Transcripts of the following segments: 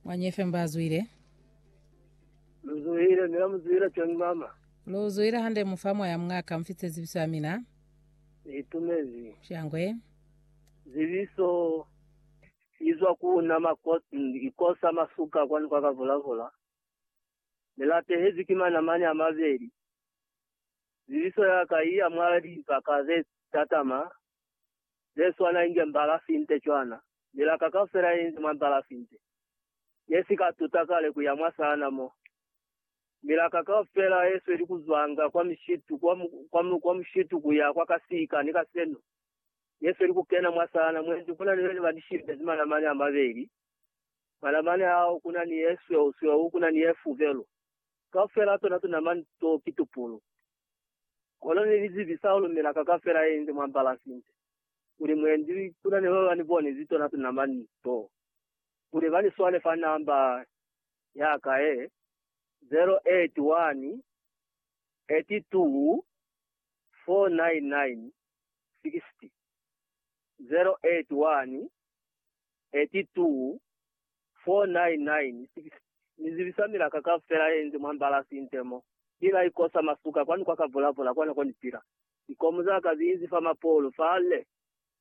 Mwanyi FM bazwile. Luzuhile, mina muzuhile John Mama. Luzuhile hande mufa moya mungaka mfitse zibiso ya mina. Itumezi. Shangwe. Zibiso izwa kuna mako, ikosa masuka kwani kwa kavulavula. Nilatehezi ki manamani a mabeli. Zibiso yaka iya mwa limpa kaze tatama. ze swana inge mbala finte cwana, milaka kaufela inze mwa mbala finte, ne si ka tuta kale ku ya mwa sana mo. Milaka kaufela ye sweli ku zwanga kwa mishitu, kwa, kwa, kwa mushitu ku ya kwa kasika, ni kaseno, ye sweli ku kena mwa sana, mwendi kuna ni bene ba ni shibezi manamane a mabeli, manamane ao kuna ni ye sweu, sweu kuna ni ye fubelu, kaufela tona tunamani to ki tupulu. Kono ni li zibi sa ku lumela ka ka fela inze mwa bala sinte, kuli mwendi kuna ne ba ba ni boni zi tona tona mwa ni to, kuli ba ni swale fa namba ya ka ye 081 82 499 60. 081 82 499 Ni zibisa milaka kaufela ye inze mwa mbalasi inte mo. Ki la ikosa masuka kwani kwa ka volavula kwa nako ni pila. Likomu za ka zi inzi fa mapolu fale.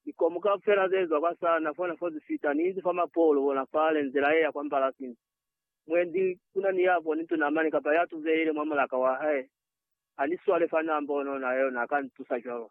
Likomu kaufela ze zwa kwa sana fona fo zi fita ni inzi fa mapolu bona fale nzela ye ya kwa mbalasi ni. Mwendi kuna ni ya boni tuna mane kapa ya tuzeile mwa mulaka wa hae. Ha ni swale fa na mbono na yona a ka ni tusa cwalo.